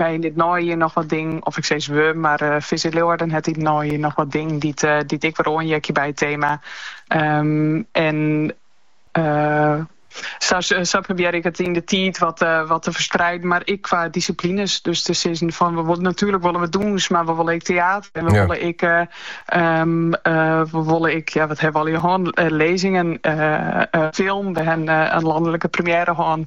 Wy yn it neijier noch wat dingen, of ik sis we, mar Visit Leeuwarden hat yn it neijier noch wat dingen dy't dy't ek wer oanheakje by it tema. En sa sa probearje ik it yn de tiid wat wat te ferspreiden, mar ek qua disciplines. Dus te sizzen fan natuerlik wolle we dûns, mar we wolle ek teäter en we wolle ek we wolle ek, ja wat ha we allegear hân, lezingen, film. We ha in landelijke première hân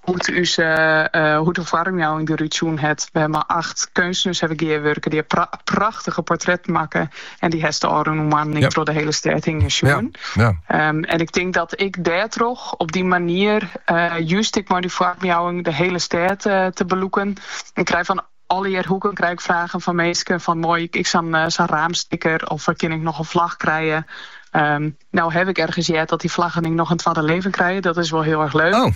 Hoe't ús hoe't de foarmjouwing derút sjoen hat. We ha mei acht keunstners ha we gearwurke. Dy ha prachtige portretten makke en dy hast de ôfrûne moannen ek troch de hiele stêd hinge sjoen. En ik tink dat ek dêrtroch, op dy manier, just ek mei dy foarmjouwing de hiele stêd te belûken, ik krij fan Allegear hoeken krij ik fragen fan minsken fan mei ik sa'n raamsticker of kin ik noch in flach krije. No haw ik earne heard dat dy flaggen ek noch in twadde libben krije. Dat is wol hiel erch leuk. Oh.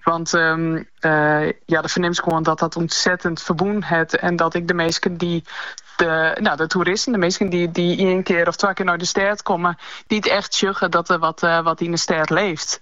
Want um, uh, ja, do fernimst gewoan dat dat ontzettend ferbûn hat. En dat ek de minsken dy't de, no, de toeristen, de minsken dy't, dy't ien kear of twa kear nei de stêd komme, no echt sjogge dat der wat, uh, wat yn de stêd libbet.